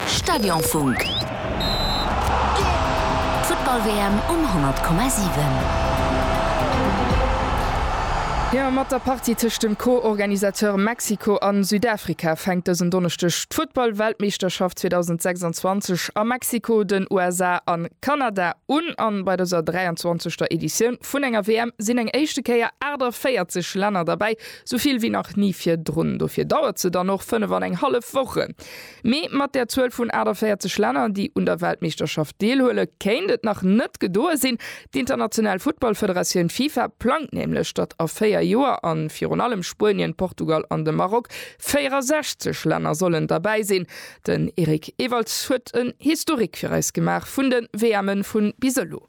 Stadionfunk. D'Futtball-WM um 100,7. Jo, mat der Partie tëscht dem Co-Organisateur Mexiko a Südafrika fänkt dësen Donneschdeg d'Futtball-Weltmeeschterschaft 2026 a Mexiko, den USA a Kanada un. An bei dëser 23. Editioun vun enger WM sinn eng éischte Kéier 48 Länner derbäi. Sou vill wéi nach ni virdrun. Dofir dauert se dann och fënnef an eng hallef Wochen. Mee mat där Zuel vun 48 Länner, déi un der Weltmeeschterschaft deelhuele, kéint et nach net gedoe sinn. D'International Futtballfederatioun Fifa plangt nämlech, datt a véier Joer, a virun allem Spuenien, Portugal an de Maroc, 64 Länner sollen derbäi sinn. Den Eric Ewalds huet en Historique fir eis gemaach vun de WMen vun bis elo.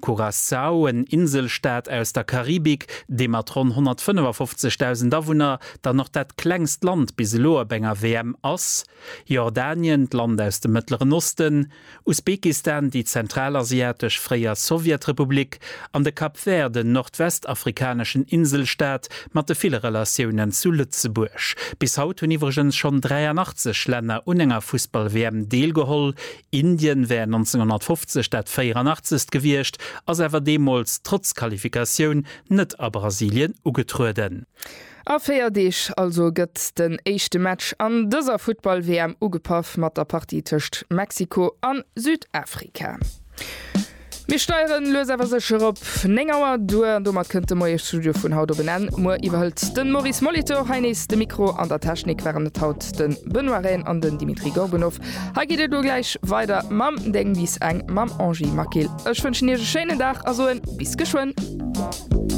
Curaçao, en Inselstaat aus der Karibik, dee mat ronn 155.000 Awunner dann och dat klengst Land bis elo op enger WM ass, Jordanien, d'Land aus dem Mëttleren Osten, Usbekistan, déi zentralasiatesch fréier Sowjetrepublik, an de Cap Vert, en nordwestafrikaneschen Inselstaat mat de ville Relatiounen zu Lëtzebuerg. Bis haut hunn iwwregens schonn 83 Länner un enger Fussball-WM deelgeholl, Indien wär 1950 dat 84. gewiescht, ass awer deemools trotz Qualifikatioun net a Brasilien ugetrueden. A 4 Deeg also gëtt den éischte Match an dëser Futtball-WM ugepaff mat der Partie tëscht Mexiko a Südafrika. Mir steieren lues awer sécher op 9 Auer duer an domat kënnt de Moiesstudio vun haut op en Enn. Muer iwwerhëlt de Maurice Molitor hei nees de Mikro. An der Technik waren et haut de Benoît Rehn an den Dimitri Gorbunov. Hei geet et elo gläich weider mam Deng bis Eng mam Angie Maquil. Ech wënschen Iech e schéinen Dag a soen bis geschwënn.